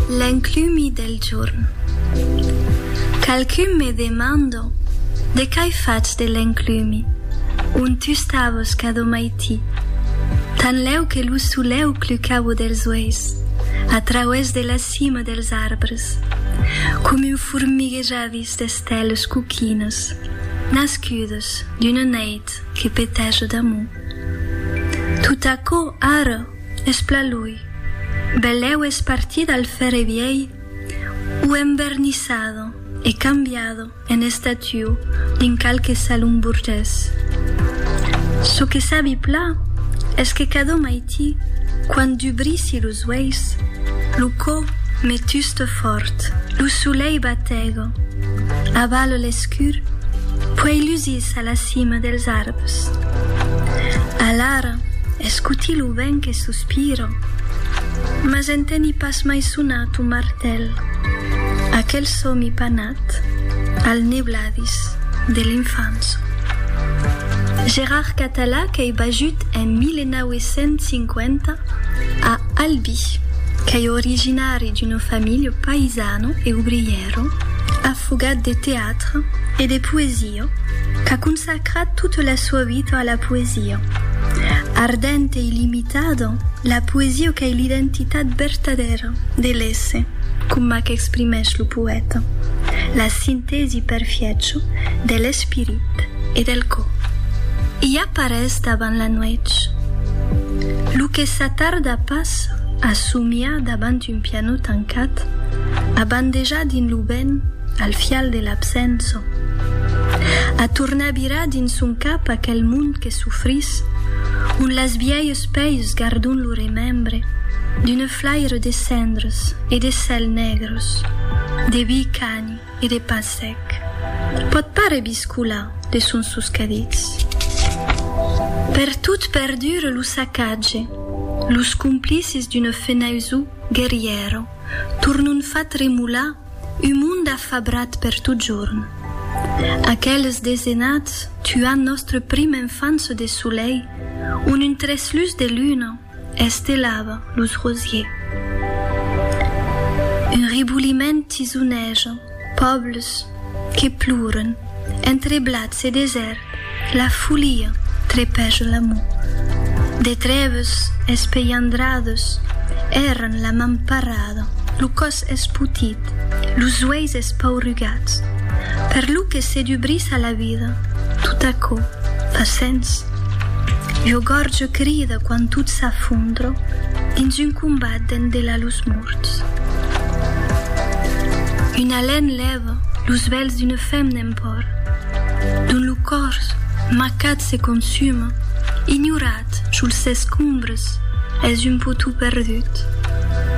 L'enclumi del jorn. Qualqu'un me demando de qu'ai fach de l'enclumi, on tu stavos cadò maití, tanlèu que lo solèu clucavo dels uèis a trauès de la cima dels arbres, com un formiguejadís d'esteles coquinas nascudas d'una neit que petèja d'amor. Tot aquò ara Es pla lui. Belèu es partida al fèrre vièi o envernissado e cambiado en estatiu dins qualque salon burgés. Çò que sabi pla es que cadó maiti quand dubrissi los uèis, lo cò me tusta fòrt, lo solei batego, Aval l'escur, puèi lusís a la cima dels arbres. Alara escoti lo vent que sospira, mas enteni pas mai sonar ton martèl, aquel sòmi panat al nebladís de l'infança. Gerard Català qu'ei bajut en 1950, A Albi, qu'ei originari d'una familha païsana e obrièra, afogat de teatre e de poesia, qu'a consacrat tota la soa vita a la poesia. Ardenta e illimitada, la poesia qu'ei l'identitat vertadèra de l'èsser, coma qu'exprimèsh lo poèta, la sintèsi perfiècha de l'espirit e del còr. I aparés davant la nuèch. Lo que s'atarda pas a somiar davant un pianò tancat, a bandejar dins lo vent al fial de l'absença, a tornar virar dins son cap aquel mond que sofrís, ont las vièlhs pèirs gardon lo remembre d'una flaire de cendres e de cèls negres, de viu cani. E de pas sec. Pòt pas rebiscolar de sons soscadits. Pertot perdure lo sacatge, los complicis d'una fenaisó guerrièra tornon far tremolar un mond afabrat per totjorn. Aqueles desenats tuan nòstre prim enfance de solei ont un treslús de luna, Estelavan los rosiers. Un riboliment tisoneja. Pòbles que ploren. Entre blats e desèrt la folia trepèja l'amor. De trèves espelhandrades èran la man parada, lo còs espotit, los uèis espaurugats. Per lo que se dubrissa la vida, tot aquò fa sens. Lo gorge crida quand tot s'afondra dins un combat dens de la los morts. Un alen lèva los vèls d'una fem n'en pòr, dont lo còrs macat se consuma, ignorat sul ses combres es un potou perdut,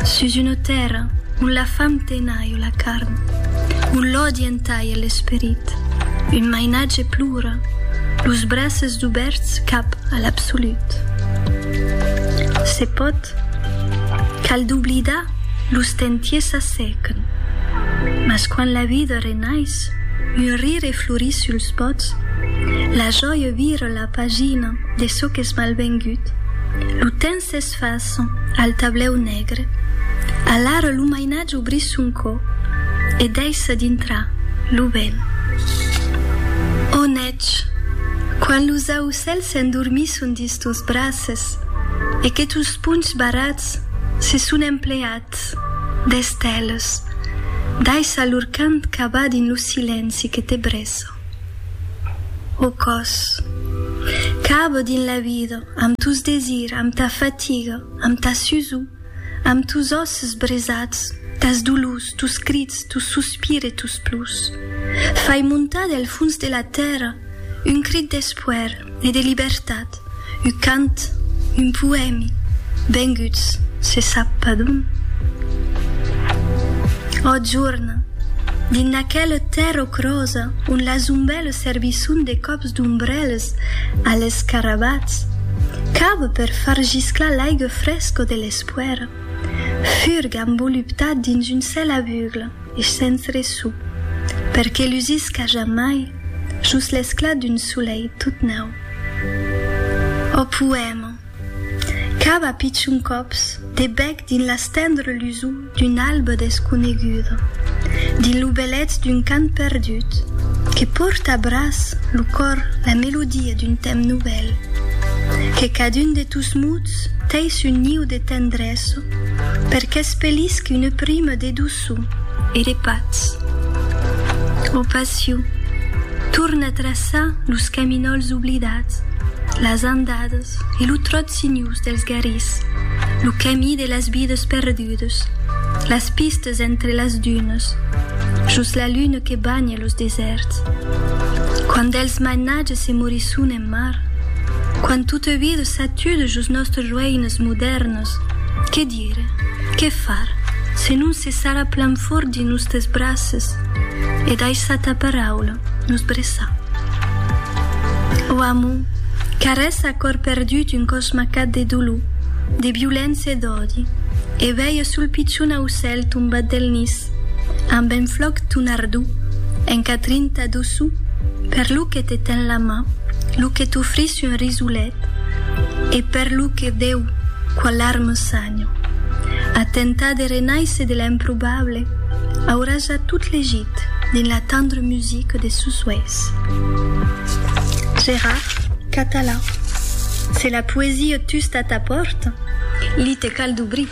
sus una tèrra ont la fam tenaiu la carn, ont l'òdi Talha l'esperit, un mainatge plora, los braces dubèrts cap a l'absolut. Se pòt, cal doblidar, los tentiers s'assèquen, mas quand la vida renais, un rire florís suls bòts, la jòia vira la pagina de çò qu'es malvengut, lo temps es. Tot façon, al tablèu negre, alara lo mainatge obrís son cò e deissa dintrar lo vent. Ò nètz, quand los aucèls s'endormisson dins tos braces e que tos ponhs barrats se son empleats d'esteles, daissa lor cant cavar dins lo silenci que te bressa. Au còs. Cabo dins la vida, amb tos desirs, amb ta fatiga, amb ta susor, amb tos òsses bresats, tas dolors, tos crits, tos sospirs e tos plors. Fai montar del fons de la tèrra un crit d'espoèr. Ne de libertat, un cant, un poèmi, venguts se sap pas d'ont. Ò jorna, dins d'aquela tèrra ocrosa ont las ombèlas servisson de còps d'ombrèlas a l'escarabats, cava per far gisclar l'aiga fresca de l'espoèra, furga envoluptat dins un cèl avugla e sens ressò, per que lusisca jamai. Jos l'esclat d'un solelh tot nau. Ò poèma! Cap a pichon còps de bèc dins las tendres lusors d'una alba desconeguda, dins lo belèth d'un cant perdut que pòrta a braç lo còr la melodia d'un temps novèl, que cadun de tos mots tèis un niu de tendresa per qu'espelisque una prima de doçor. braçu e de patz. Lo passiu torna traçar los caminòls oblidats, las andadas e lo tròt sinhós dels garrís, lo camí de las vidas perdudas, las pistas entre las dunas, jos la luna que banha los desèrts. Quand dels mainatges se morisson en mar, quand tota vida s'atuda jos nòstres roïnas modèrnas, Ire, qué far, se non se sarà plan fòrt dins nustes braces e daissar ta paraula nos breçar. Ò amor, qu'arrèst a còr perdut un còs macat de dolor, de violéncia e d'òdi, e veia sul pichon aucèl tombat del nis, amb un flòc ton ardor, un catrin ta doçor, per lo que te ten la man, lo que t'ofrís un risolet, E per lo que deu qualhar me sanho, a tentar de renaisser de l'improbable aurà ja tot legit dins la tendre musique de sos uèis. Gérard Catalan Se la poesia tusta a ta pòrta, li te cal dobrir.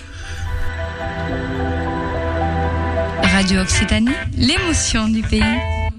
Radio Occitanie, l'emotion du pays.